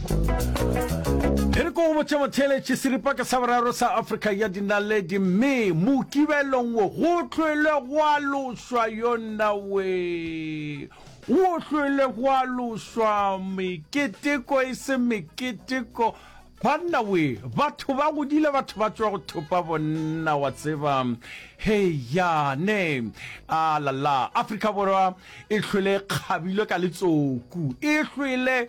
E re ko go botšemotheeletši seripaka sa boraro sa Afrika ya dinaledi mme mokibelong wo go hlwele gwa loswa yonna we go hlwele gwa loswa meketeko e se meketeko banna we batho ba godile batho ba tswa go thopa bonna wa tseba heyane a lala Afrika Borwa e hlwele kgabilwe ka letsoku e hlwele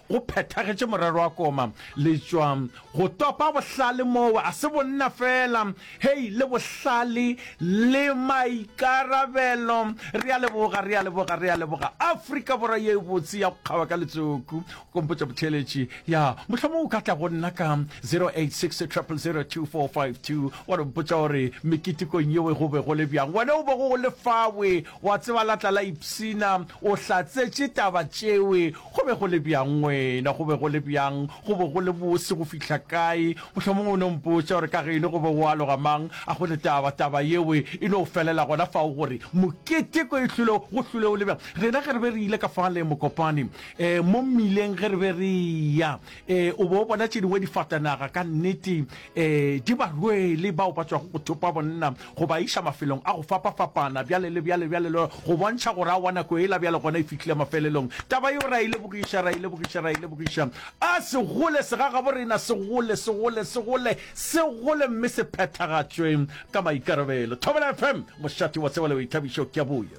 Go phethagetše morero wa koma letšwa. Go topa bohlale moo a se bonna fela, hei, le bohlale le maikarabelo. Re a leboga, re a leboga, re a leboga, Afrika Borwa ye e botse ya go kgawa ka letsoku. O ka mpotša botheeletši, ya, mohlomong o ka tla go nna ka 0860002452, wa re mpotša gore meketekong yeo go be go le bjang. Wena o bego o le fawe, wa tseba la tla la ipshina, o hlatsetše taba tšeo, Go be go le bjang, wena? Go be go le bjang? Go be go le bose go fihla kae? Mohlomongwe o no mpotša gore ka ge e le go be go aloga mang, a go le taba, taba yeo e no felela gona fao gore, Mokete ko e hlwile, go hlwile go le bjang? Rena ge re be re ile ka fale, Mokopane, eh, mo mmileng ge re be re eya, eh, o be o bona tše dingwe difatanaga, ka nnete, um di ba rwele bao ba tswago go thopa bonna go ba iša mafelong a go fapa-fapana bjale le bjale bjale le go bontšha gore a wa nako ela bjale gona e fihlile mafelelong taba yeo ra e lebogiša ra e lebogiša ra e lebogiša a segole segagabo rena segole segole segole segole mme se phethagatšwe ka maikarabelo thobela fm mošate wa tsebale o ithabišo ke a boya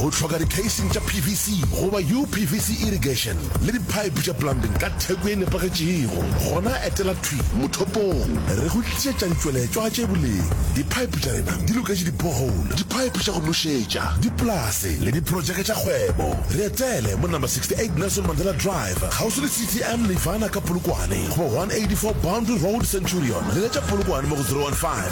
Go hloka dikheising tša PVC goba UPVC irrigation le diphaephe tša plumbing ka theko e nepagetšego? Gona etela thwi mothopong re go tlišetša ditšweletšwa tše boleng. Diphaephe tša rena di loketše di-borehole, diphaephe tša go nošetša, dipolase le diprotšeke tša kgwebo. Re etele mo Number 68 Nelson Mandela Drive, kgauswi le CTM Nirvana ka Polokwane, goba 184 Boundary Road, Centurion. Leletša Polokwane mo go 015